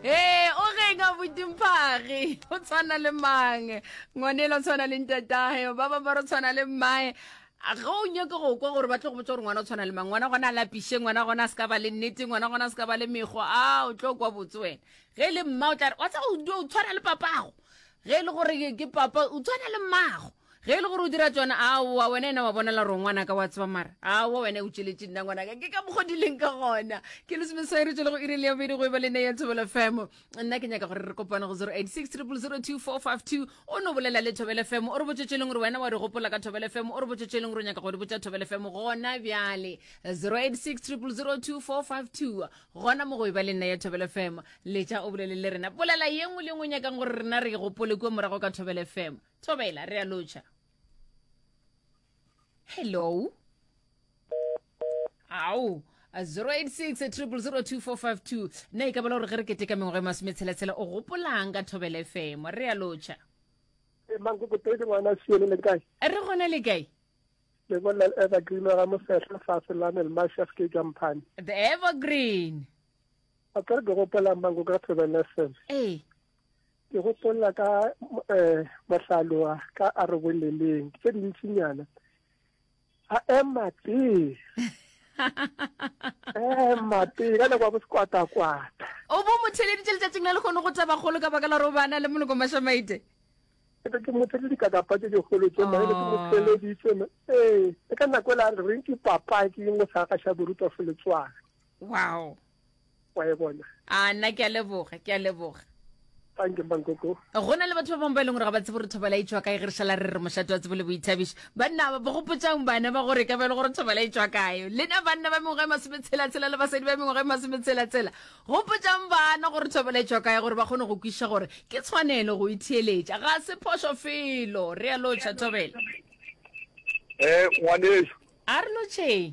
ee o reng a butimphagi o tshwana le mang ngwanela o tshwana le ntatae ba ba ba re tshwana le mmae ga o nyake go kwa gore ba tlo go botsa gore ngwana o tshwana le mang ngwana gona a lapiše ngwana gona a se ka ba le nnete ngwana gona a se ka ba le mekgo a o tlo kwa botse wena ge e le mma o tla re wa tsa o tshwana le papago ge e le gore ke papa o tshwana le mmago Ge e le gore o dira tšona, aowa, wena ena wa bona laro ngwanaka wa tseba mara. Aowa, wena o tšweletše nna ngwanaka. Ke ka mokgwa di leng ka gona. Ke le semeswae re tšwele go iri le ya bobedi go eba le nne ya Thobela FM. Nna ke nyaka gore re kopane go 0860002452. O no bolela le Thobela FM. O re botše tšeleng gore wena wa di gopola ka Thobela FM. O re botše tšeleng gore o nyaka go di botša Thobela FM gona bjale. 0860002452. Gona mo go eba le nna ya Thobela FM. Letša o bolele le rena. Bolela ye nngwe le ye nngwe o nyakang gore rena re e gopole kua morago ka Thobela FM. thobela re a lotšha hello ao 0860002452 nna e ka bela gore ge re keteka mengwaga e masometshela-tshela o gopolang ka thobela fm re a lotšha Eh, mankokotedi ngwana siele le kae a re gona le kae le bolela le evergreen wa ga mosehla fase lanel mashaf ke jamphane the evergreen a ka re ke gopolang mankoko ka thobela fm ee ke gopolla ka um eh, mohlaloa ka a re boleleng tse dintsinyana a ema pele ema pele ka nako ya bosekwatakwata o bo motheleditše letšatšing la lekgono go taba kgolo ka baka la gore o bana le moloko mašamaite ebe ke motheleditše dikakapa tse dikgolo tse maele ke motheleditše ee le ka nako e la reng ke papaki e ngwe sa gaša boruta fo letswana wow wa e bona a nna ke a leboga ke a leboga thank you mankoko go na le batho ba bangwe ba e leng gore ga ba tsebo gore thobala e tswa kae ge re šala re re mošate wa tsebo le boithabišo banna ba bogopotsang bana ba gore ka bele gore thobala e tswa kae lena banna ba mengwaga e masome tshelatshela le basadi ba mengwaga e masome tshelatshela gopotsang bana gore thobala e tswa kae gore ba kgone go kwiša gore ke tshwanelo go itheeletša ga se phoso felo re ya lotšha thobela um ngwaneso a re lotšheng